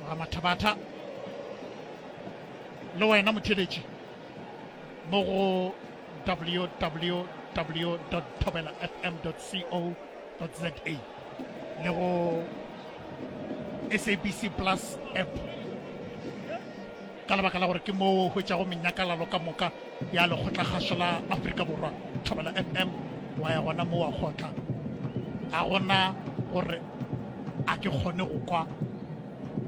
tloga mathabatha le wena motheletši mo go www thobela fm co za le go sabc plus app ka lebaka la gore ke moo o hwetšago menyakalalo ka moka ya lekgotlakgaso la aforika borwa thobela fm wa ya gona moo wa kgotla ga gona gore a ke kgone go kwa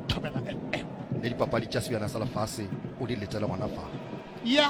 thobela fm le dipapadi tša sebjana sa lefase o di letele gona fa ya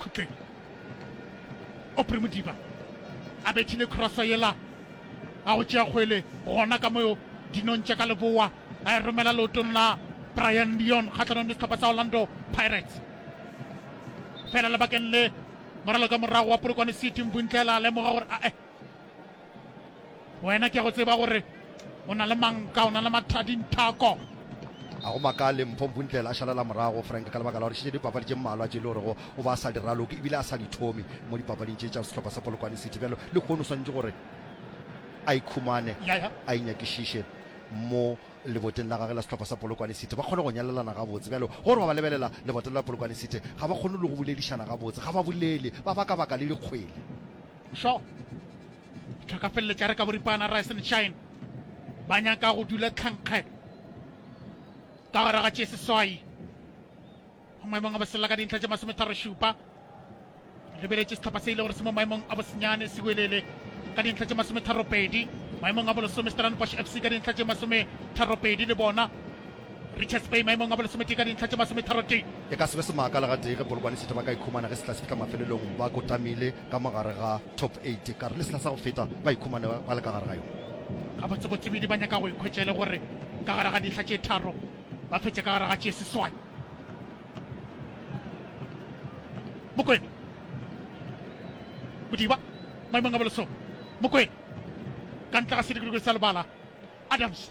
khutleng opri modiba a bethile crossa yela a go tšea kgwele gona ka moyo dinong tša ka leboa a e romela leotong la brian leon kgatlhanong le setlhopha sa orlando pirates fela lebakeng le moralo ka morago wa polokwane city mbuntle la lemoga gore ae wena ke go tseba gore o na le manka o na le mathadinthako a go makale mpho mphuntlela a šalela morago frank ka lebaka la gore šetše dipapadi tše mmalwa tše e le gorego o ba a sa di raloke ebile a sa di thome mo dipapading tše tša sehlopha sa polokwane city bjalo le kgono swantse gore a ikhumane a inyakišiše mo leboteng la gage la sehlopha sa polokwane city ba kgone go nyalelana gabotse bjalo gore ba ba lebelela leboteng la polokwane city ga ba kgone le go boledišana gabotse ga ba bolele ba baka baka le dikgwele Sho tlhakafelletša re ka boripana Rice and Shine ba nyaka go dula tlhankge ka gore ga tšee seswai go maemong a bosela ka dintlha tša masometharo šupa lebeletše setlhopha se ile gore se mo maemong a bosenyane se welele ka dintlha tše masometharo pedi maemong a bolesome stellenbosch fc ka dintlha tše masometharo pedi le bona Richards Bay maemong a bolesometee ka dintlha tše masometharotee. E ka se be semaka le gatee ge Polokwane City ba ka ikhumana ge sehla se fihla mafelelong ba kotamile ka mo gare ga top 8 ka re le sehla sa go feta ba ikhumane ba le ka gare ga yona. Gabotsegotsebedi ba nyaka go ikhwetša e le gore ka gare ga dintlha tše tharo ba fetše ka gare ga tše seswai. Mokwena Modiba maemong a bolesome. Mokwena ka ntle ga sedikidikidi sa lebala Adams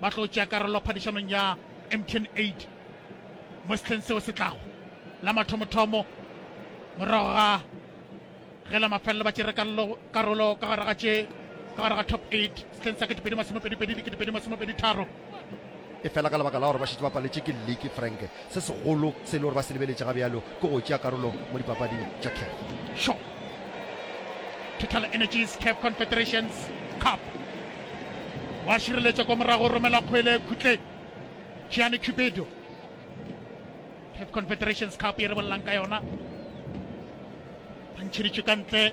ba tlo tšea karolo phadišanong ya mtn 8 mo sehleng seo se tlago la mathomothomo morago ga ge la mafelelo ba tšere karolo ka gare ga tše ka gare ga top 8 sehleng sa ketepedi masomepedipedi le ketepedi masomepedi tharo e fela ka lebaka la gore ba šetse ba paletše ke leke frank Se segolo se e le gore ba se lebeletše ga bjalo ke go tšea karolo mo dipapading tša CAF. Shaw. TotalEnergies CAF Confederations Cup. O a šireletša kwa morago, romela kgwele khutleng. Gianni Cupido. CAF Confederations Cup ye re bolelang ka yona. Ba ntšheditšwe ka ntle.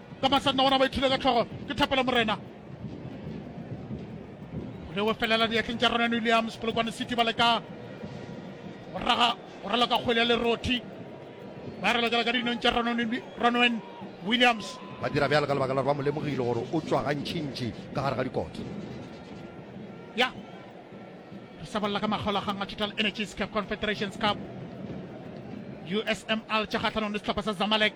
ka masanna gona ba ithule ka tlhogo ke thapelo morena le o felela diatleng tša ronan williams polokwane city ba leka go raga go rala ka kgwele ya lerothi ba rela jala ka dinong tša ronwen williams ba dira bjale ka lebaka la gore ba mo lemogile gore o tswa gantšintši ka gare ga dikotlo ya re sabolla ka makgaolagang a total energies cap confederations cup usml tša kgatlhanong le setlhopha sa zamalek